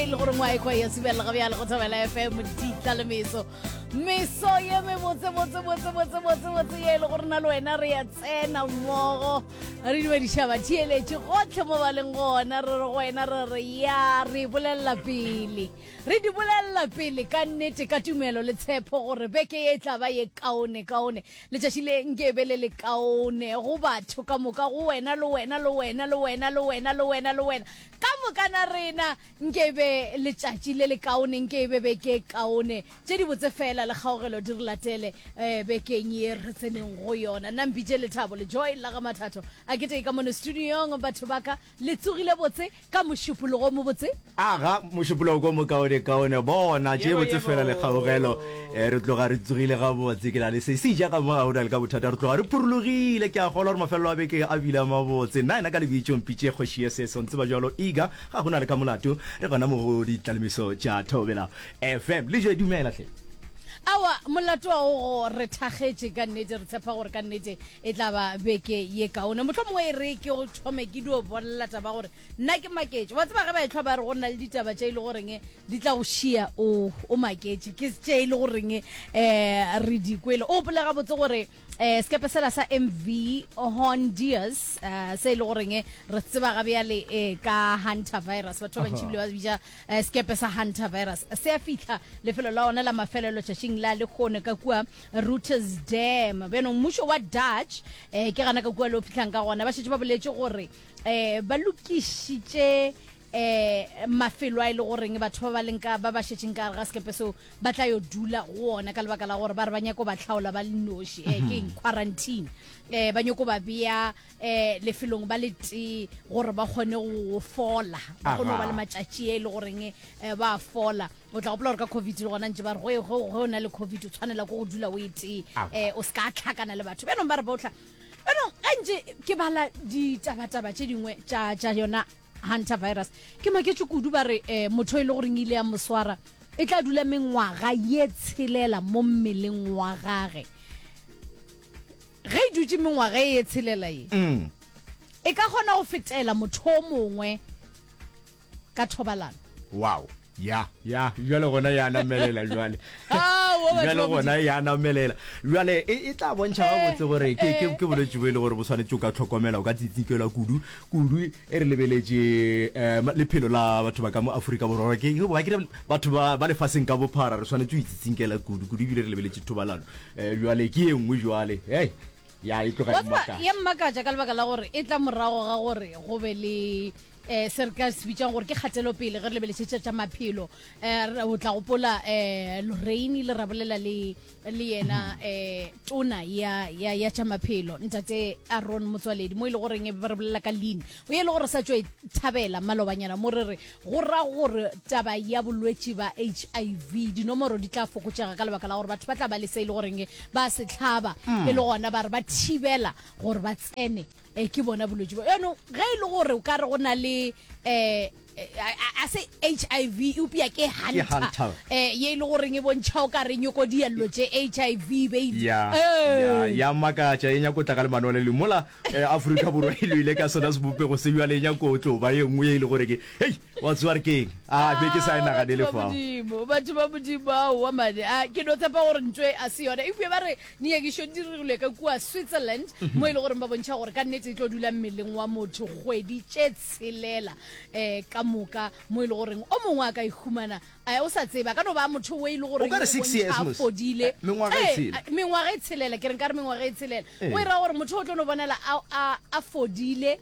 e le gore ngwa ekwa ya sibelela ga bjale go thabela fm ditla le meso meso ye mebotsebotsebotsebotsebotsebotse ye e le gore na le wena re ya tsena mmogo re dumedišaba theeletše gotlhe mo ba leng gona re re go wena re re ya re bolelela pele re di bolelela pele ka nnete ka tumelo le tshepo gore beke ye e tla ba ye kaone kaone letšatši le nke be le le kaone go batho ka moka go wena le wena le wena le wena le wena le wena le wena Ka moka na rena nke e be letšatši le lekaone, nke e be beke e kaone, tše dibotse feela le kgaogelo di re latele um bekeng ye re tseneng go yona. Nna mpitše Lethabo Lejoy la ga Mathato a ketee ka mono studiong. Batho ba ka le tsogile botse ka mošupologo o mobotse. Aga, mošupologo o mokaonekaone. Bona, tše botse feela le kgaogelo. E re tloga re tsogile gabotse, ke na le se se ja ka mo ga o na le ka bothata. Re tloga re phurulogile, ke a kgolwa gore mafelelo a beke a bile a mabotse. Nna yena ka lebitšo Mpitše kgoši ye seso, ntseba bjalo Iga, ga go na le ka molato, re gona mo go ditlalemiso tša Thobela FM. Lejwe, dumela hle. Aowa, molato wa go go re thakgetše ka nnete, re tshepa gore ka nnete e tla ba beke ye kaone. Mohlomongwe e re ke go thome ke dio bolela taba ya gore nna ke maketše wa tseba ge ba etlhwa ba re go nna le ditaba tše e le goreng di tla go šia o o maketše ke tše e le goreng um re di kwele o opole gabotse gore um sekepe sela sa mv hondius um se e le goreng re tseba ga bjale um ka hunter virus batho ba bantšhi bile ba bija um sekepe sa hunter virus se a fitlha lefelo la one la mafelelo tšatšing la lekgone ka kua routers dam bjanong mmušo wa dutch um ke gana ka kua le o fitlhang ka gona ba šetse ba boletše gore eh ba lokišitše eh mafelo a ile e goreng batho ba ba leng ka ba ba šetšeng ka ga sekepe seo ba tla yo dula go ona ka lebaka la gore ba re ba nyako ba tlhaola ba le noši eh ke eng quarantine eh ba nyako ba bea eh lefelong ba le tee gore ba kgone go fola ba kgone go ba le matšatši e le goreng eh ba fola o tla gopola gore ka covid le gona ntse ba re go o na le covid o tshwanela ko go dula o e tee eh o se ka tlhakana le batho bjanong ba re ba o eno ga ntse ke bala ditabataba tše dingwe tša yona hunter virus ke maketše kudu ba re um motho e le goreng ile ya moswara e tla dula mengwaga ye tshelela mo mmeleng wa gage ge e dutse mengwaga e ye tshelela ye mm. e ka kgona go fetela motho o mongwe ka thobalano wow ya ya jale gona ya namelela jale jale gona ya namelela jale e, e tla bontšha ba botse gore ke ke ke bolwetse bo e le gore bo tshwanetse o ka tlhokomela o ka tsitsikela kudu kudu e re lebeletse eh, lephelo la batho ba ka mo Afrika borwa ke ke ba kire batho ba ba lefaseng ka bophara re tshwanetse o itsitsinkela kudu kudu bile re lebeletse thobalano eh, jale ke e nngwe jale hey ya e tloga e mmakatša ka lebaka la gore e tla morago ga gore go be le um se re ka se bitsang gore ke kgatelopele ge re lebelešetša tša maphelo um o tla gopola um loreine le rabolela le le yena um tona ya ya ya tša maphelo ntate aron motswaledi mo e le goreng ba re bolela ka lean o e le gore sa tšo e thabela malobanyana mo re re go ra gore taba ya bolwetši ba h i v dinomoro di tla fokotšega ka lebaka la gore batho ba tla ba le se e le goreng ba se tlhaba e le gona ba re ba thibela gore ba tsene e ke bona bolwetse bo yaanong ge e le gore o ka re go na le um a se hiv eupša ke hunter eh ye e le goreng e bontšha o ka re nyoko diello tše hiv ya makatša e nyako tla ka lemano le limola eh, aforika borwa e loile ka sona sebopego se bjale e nyako o tlo ba ye nngwe ye e le gore ke hei wa tsewa re keng a ah, be ke sa e naganele fa batho ba modimo ao wa mane a ah, ke no tshepa gore ntswe a se yona eupša ba re Nyakišo di dirilwe ka kua Switzerland mo e le goreng ba bontšha gore ka nnete e tlo dula mmeleng wa motho kgwedi tše tshelela um ka moka mo e le goreng o mongwe a ka ihumana um o sa tsebe a ka no ba motho o e le goreng bontšha a fodile eh, mengwaga e eh, tshelela ke reng ka re mengwaga e tshelela o e ra gore motho o tlo no bonala a fodile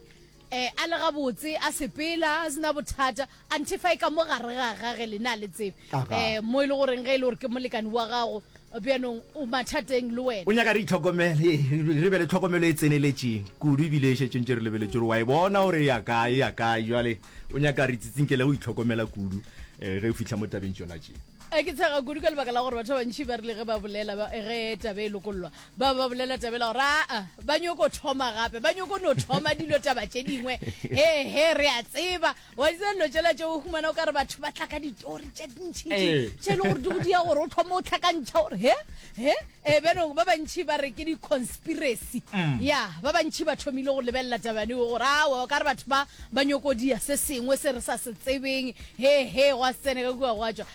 e, a le gabotse, a sepela, a sena bothata, anthe fa e ka mo gare ga gage le ne a le tsebe Aga. e, mo e le goreng ge e le gore ke molekane wa gago bjanong o mathateng le wena O nyaka re itlhokomele, re re be le tlhokomelo e tseneletšeng kudu ebile e šetše ntše re lebeletse gore wa e bona gore e ya kae, e ya kae. Bjale o nyaka re tsitsinkele go itlhokomela kudu eh, ge o fihla mo tabeng tšona tše. E, ke tshega kudu ka lebaka la gore batho ba bantši ba rile ge ba bolela ba- ge taba e lokollwa ba ba bolela tabela gore aa ba nyoko thoma gape ba nyoko no thoma dilo taba tše dingwe hehe re a tseba wa itse dilo tšela tše o humana o ka re batho ba tla ka ditori tše dintšhitši ee. tše e le gore di go dia gore o thoma o tlhakantšha gore he he ee bjanong ba bantšhi ba re ke di-conspiracy mm. ya ba bantšhi ba thomile go lebelela tabane o gore awa o ka re batho ba ba nyokodia se sengwe se re sa se tsebeng hehe gwa tsene ka kua gwa tswa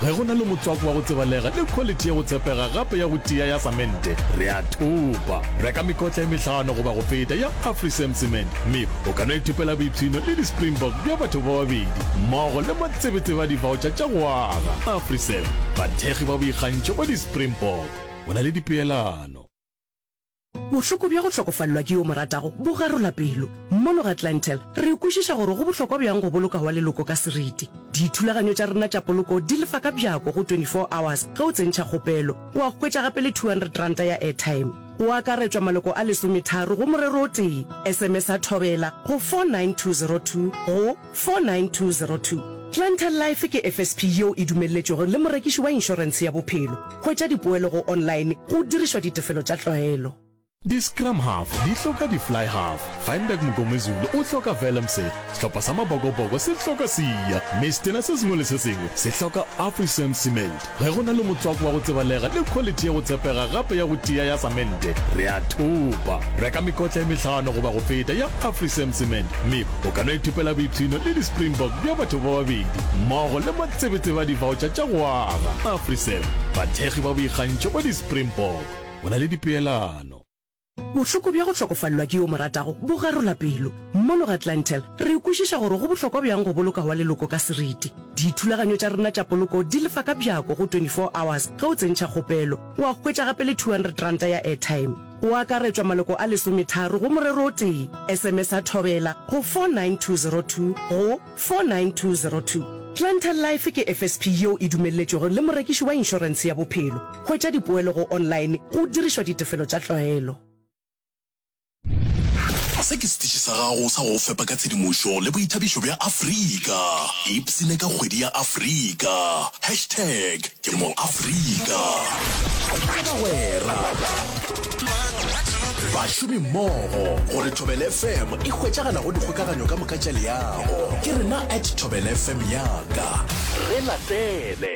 Ge go na le motswako wa go tsebalega le khwaliti ya go tshepega gape ya go tia ya samente, re a thopa. Reka mekotla e mehlano goba go feta ya Afrisem Cement mme o ka no ithopela boipshino le di-Springbok bja batho ba babedi mmogo le matsebetsebe a divaotšha tša go aga. Afrisem, bathekgi ba boikgantšho ba di-Springbok. Go na le dipeelano. Bohloko bja go hlokofalelwa ke yo o mo ratago bo garola pelo. Mono ga Clientele, re kwešiša gore go bohlokwa bjang go boloka wa leloko ka seriti. Dithulaganyo tša rena tša poloko di lefa ka bjako go 24 hours ge o tsentšha kgopelo. Wa hwetša gape le R200 ya airtime. Go akaretšwa maloko a lesometharo go morero o tee. Sms-a Thobela go 49202 go. 49202. Planter Life ke FSP yeo e dumelletšwego le morekiši wa inšorense ya bophelo. Hwetša dipoelo go online go dirišwa ditefelo tša tlwaelo. Di-scrum half di hloka di-fly half. Feinberg Mngomezulu o hloka Vellemse. Sehlopha sa Mabokoboko se hloka Siya. Mme setena se sengwe le se sengwe se hloka Afrisan Cement. Ge go na le motswako wa go tsebalega le khwaliti ya go tshepega gape ya go tia ya samente, re a thopa. Reka mekotla e mehlano goba go feta ya Afrisam Cement mme o ka no ithopela boipshino le di-Springbok bja batho ba babedi mmogo le matsebetsebe a divaotšha tša go aga. Afrisam, bathekgi ba boikgantšho ba di-Springbok. Go na le dipeelano. Bohloko bja go hlokofalelwa ke yo o mo ratago bo garola pelo. Mono ga Clantel, re kwešiša gore go bohlokwa bjang go boloka wa leloko ka seriti. Dithulaganyo tša rena tša poloko di lefa ka bjako go 24 hours ge o tsentšha kgopelo. O a hwetša gape le 200 ranta ya airtime. O akaretšwa maloko a lesometharo go morero o tee. Sms-a thobela go 49202 go. 49202. Planter Life ke FSP yeo e dumelletšwego le morekiši wa inšorense ya bophelo. Hwetša dipoelo go online go dirišwa ditefelo tša tlwaelo. Se ke setiši sa gago sa go go fepa ka tshedimošo le boithabišo bja Afrika. Ipsine ka kgwedi ya Afrika. Hashtag. Ke mo Afrika. Ke bagwera. Bašomi mmogo gore Thobel FM e hwetšagala go dikgokaganyo ka moka tša leago. Ke rena at Thobel FM yaka. Re latele.